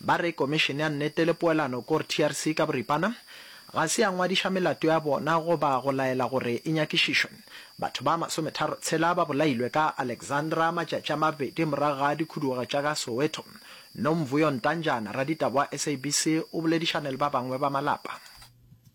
Ba re Komišene ya Nnete le Poelano, kor TRC ka boripana, ga se ya ngwadiša melato ya bona goba go laela gore e nyakišišwe. Batho ba masometharo tshela ba bolailwe ka Alexandra matšatši a mabedi morago ga dikhuduego tša ka Soweto. Nomvuyo Ntanjana, raditaba wa SABC, o boledišane le ba bangwe ba malapa.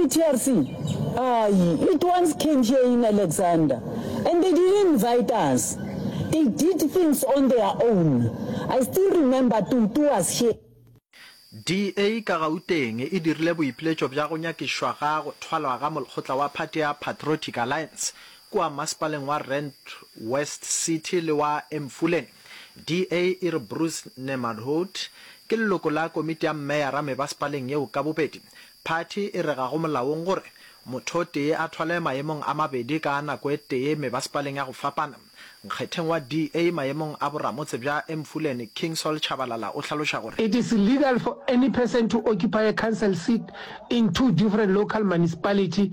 I-TRC, ayi, it once came here in Alexander and they didn't invite us. They did things on their own. I still remember Tutu was here. DA ka Gauteng e dirile boipiletšo bja go nyakišwa ga go thwalwa ga molkgotla wa phathi ya Patriotic Alliance kua masepaleng wa Rand West City le wa Emfuleni. DA e re Bruce Nemardhout ke leloko la komiti ya mmeyara mebasepaleng yeo ka bobedi. Phathi e re ga go molaong gore motho o tee a thwale maemong a mabedi ka nako e tee mebasepaleng ya go fapana. Nkgetheng wa DA maemong a boramotse bja Emfuleni, King Saul Tshabalala o hlaloša gore. It is illegal for any person to occupy a council seat in two different local municipality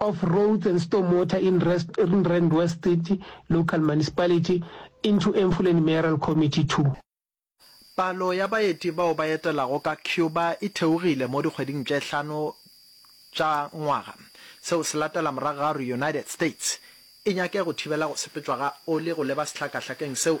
of Roads and Stormwater in Rand West City Local Municipality into Emfuleni Mayoral Committee to. Palo ya baeti bao ba etelago ka Cuba e theogile mo dikgweding tše hlano tša ngwaga. Seo se latela morago ga gore United States e nyake go thibela go sepetšwa ga oli go leba sehlakahlakeng seo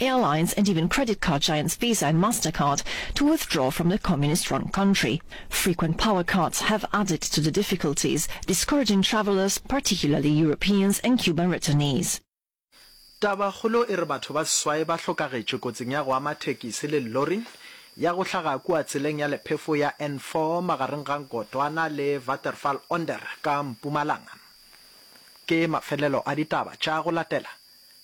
airlines and even credit card giants Visa and Mastercard to withdraw from the communist-run country. Frequent power cuts have added to the difficulties, discouraging travelers, particularly Europeans and Cuban returnees. Tabakgolo e re batho ba seswai ba hlokagetše kotsing ya go ama thekisi le llori ya go hlaga kua tseleng ya lephefo ya N4 magareng ga Nkotwana le Waterval onder ka Mpumalanga. Ke mafelelo a ditaba tša go latela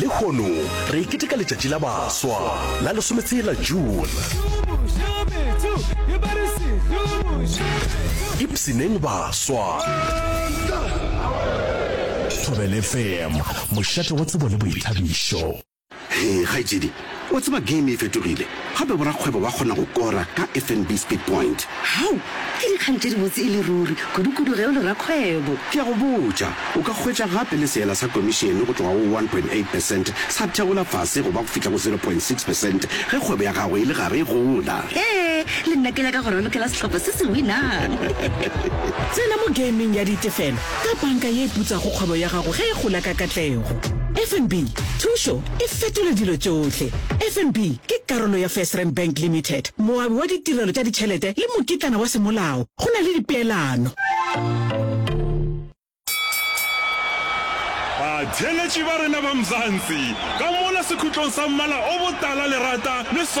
lehono re e keteka letšatši la baswa la lesometshela june ipsineng baswa thobele fm mošate wa tsebo le boithabišo Hee kgaetšedi, wa tseba game e fetogile, gape borakgwebo ba kgona go kora ka FNB Speed Point. Hau! Ke dikgang tše dibotse e le ruri, kudukudu ge o le rakgwebo. Ke a go botša, o ka hwetša gape le seela sa komišene go tloga go one point eight percent sa theola fase go ba go fihla go zero point six percent ge kgwebo ya gago e le gare e gola. Hee, le nna ke nyaka go ralokela sehlopha se se winang. Tsena mo gaming ya ditefelo ka banka ye e putsago kgwebo ya gago ge e gola ka katlego. FNB, Thušo e fetola dilo tšohle! FNB ke karolo ya FirstRand Bank Limited, moabi wa ditirelo tša ditšhelete le mokitlana wa semolao go na le dipeelano. Batheeletši ba rena ba Mzansi, ka mola sekhutlong sa mmala o botala lerata le soro.